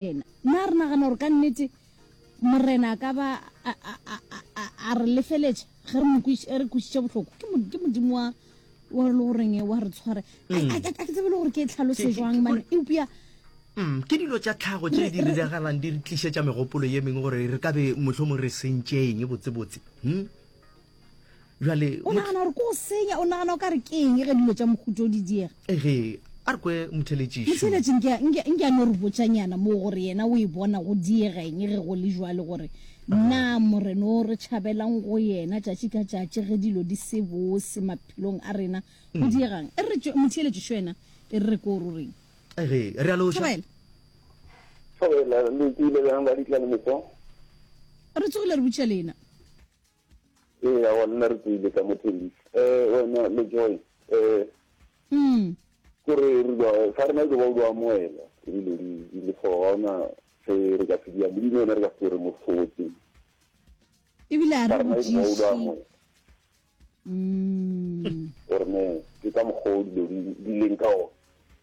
Morena. Na re nagana gore ka nnete Morena a ka ba a, a, a, a, a, a re lefeletša ge re mo kwiš, ge re kwišitše bohloko? Ke, mo, ke Modimo wa, wa le goreng wa re tshware. A, a, a, a ke tsebe le gore ke e tlhalose Ke- ke- jwang, ke- mane eupša Mm, ke dilo tša tlhago tše Re- di re- diragalang di re tlišetša megopolo ye mengwe gore re ka be mohlomong re sentše eng botsebotse hmm? bjale o nagana gore ko o senya o nagana o ka re ke eng ge dilo tša mohuto o di diega ege a re kwe motheletšišotheletši nke a no re botšanyana moo gore yena o e bona go diegeng ge go le jwale gore na moreno o re tšhabelang go yena tšatši ka tšatši ge dilo di se bose maphelong a rena go hmm. diegang e re motheletšišo yena e re re ko o roreng ege re a loša re tsogile re botša lena Ee, aowa, le nna re tsoile ka mo Tembisa. Eh, wena, le Joy, eh, Mm. ke gore re lwa, ga rena ilo ba o lwa moela, ke dilo di, di le four, ga ona se re ka se diang, Modimo yena re ka se tlo re mo hlotse, Ebile a ga re rena ilo ba o lwa botšiši. moela. Mm. Gore ne, ke ka mokgwa o dilo di, di leng ka ona.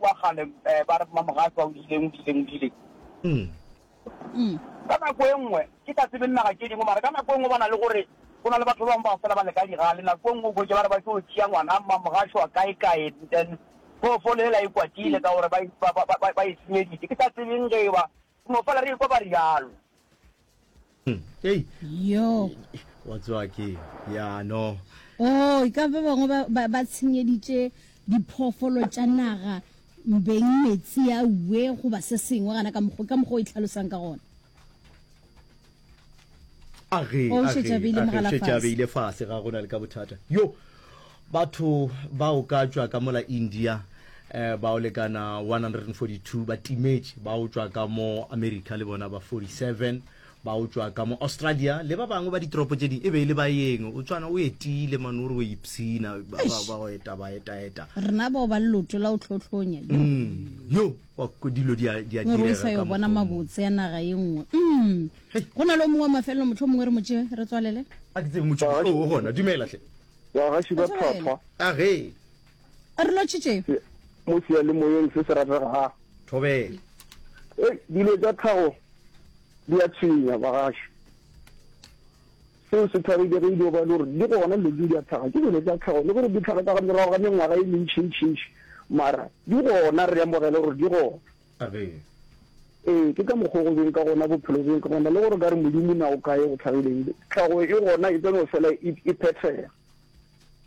Kwa kgale ba re Mmamogatswa o dileng, o dileng, o dileng. Ka nako e nngwe, ke sa tsebe dinaga tše dingwe, mara ka nako e nngwe ba na le gore go na le batho ba bangwe bao fela ba le ka digale. Nako e nngwe o hwetše ba re ba tšo tšea ngwana Mmamogašwa kae kae, then phoofolo yela e kwatile ka gore ba e senyeditše. Ke sa tsebeng ge e ba No fela re ekwa ba rialo. Hey. Yo. Wa tswa ke ya no. Oh, ka ba bangwe ba ba, ba tshenyeditše diphoofolo tša naga mbeng metsi a uwe goba se sengwe gana ka mokgo ka mokgo e tlhalosang ka gona. ageageageile fase ga gona le ka bothata yo batho ba o ka tšwa ka mola india eh, ba o lekana 142 ba timetše ba o tšwa ka mo america le bona ba 47 ba o tšwa ka mo australia le ba bangwe ba ditoropo tše ding e be e le ba yeng o tšwana o etile mane o re o ipshina ba ba- ba go eta ba etaeta rena bao ba leloto la o tlhotlhonya yo mm, yo Mo re o sa yo bona mabotse a naga ye nngwe. Umm. Go na le o mongwe wa mafelelo mohlomongwe re mo tšee, re tswalele? A ke tsebe motšo o o gona. Dumela hle. Bagaši ba tlhwatlhwa. A ge. A re lotšhitše. Se, mo seyalemoyeng se se rategago. Thobela. Hei, dilo tša tlhago di a tshwenya, bagaši. Seo se thwaregile ge e dio ba e le gore di gona dilo tse di a tlhaga. Ke dilo tsa tlhago, le gore di tlhaga ka ga morago ga mengwaga e mentšintšintši, mara di gona, re amogele gore di gona. Amen. Ee, ke ka mokgwa o go beng ka gona, bophelo beng ka gona, le gore o ka re Modimo na o kae, o tlhagileng, tlhago e gona, e tla no fela e phethega.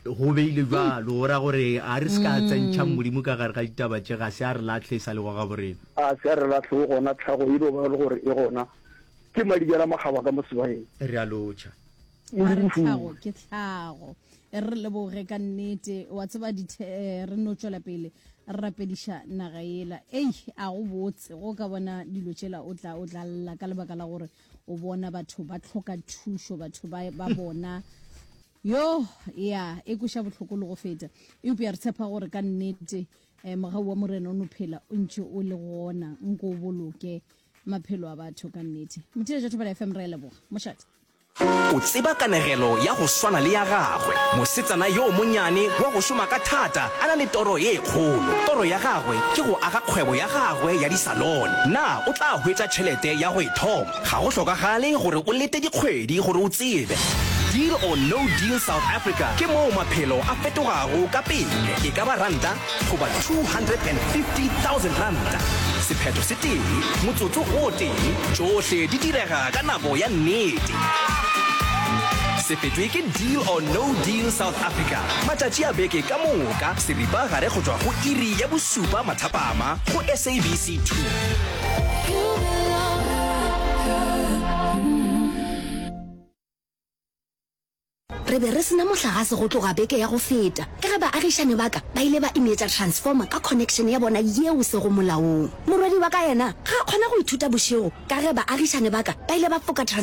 Go beile bjalo, o ra gore a re se ka tsentšhang Modimo ka gare ga ditaba tše, ga se a re lahle e sa lego gaborena. A se a re lahle, o gona, tlhago e no ba le gore e gona ke madibela makgaba ka mo sebayeng. Re a lotšha. A re tlhago ke tlhago. E re re leboge ka nnete, wa tseba dithe, re no tšwela pele re rapediša naga yela. Ei, a go botse go ka bona dilo tšela o tla, o tla lla ka lebaka la gore o bona batho ba tlhoka thušo batho ba hmm. bona yo ya e kweša bohloko le go feta eupja re tshepa gore ka nnete um mogau wa morena o no phela o ntse o le gona nko o boloke maphelo a batho ka nnete mothiletša thobela fm re leboga mošate o tseba kanegelo ya go swana le ya gagwe mosetsana yo monyane wa go šoma ka thata a na le toro ye kgolo toro ya gagwe ke go aga kgwebo ya gagwe ya Alone. Na o tla hwetša tšhelete ya go e thoma? Ga go hlokagale gore o lete dikgwedi gore o tsebe. Deal or No Deal South Africa ke moo maphelo a fetogago ka pele, e ka ba ranta goba R250,000. Sephetho se tee, motsotso o tee, tšohle di direga ka nako ya nnete. Se fetšwe ke Deal or No Deal South Africa, matšatši a beke ka moka, seripa gare go tšwa go iri ya bo Supa Mathapama go SABC 2. Re be re sena mohlagase go tloga beke ya go feta ka ge baagišane ba ka ba ile ba imetša transformer ka connection ya bona yeo se go molaong. Morwedi wa ka yena ga a kgona go ithuta bošego ka ge baagišane ba ka ba ile ba foka transformer.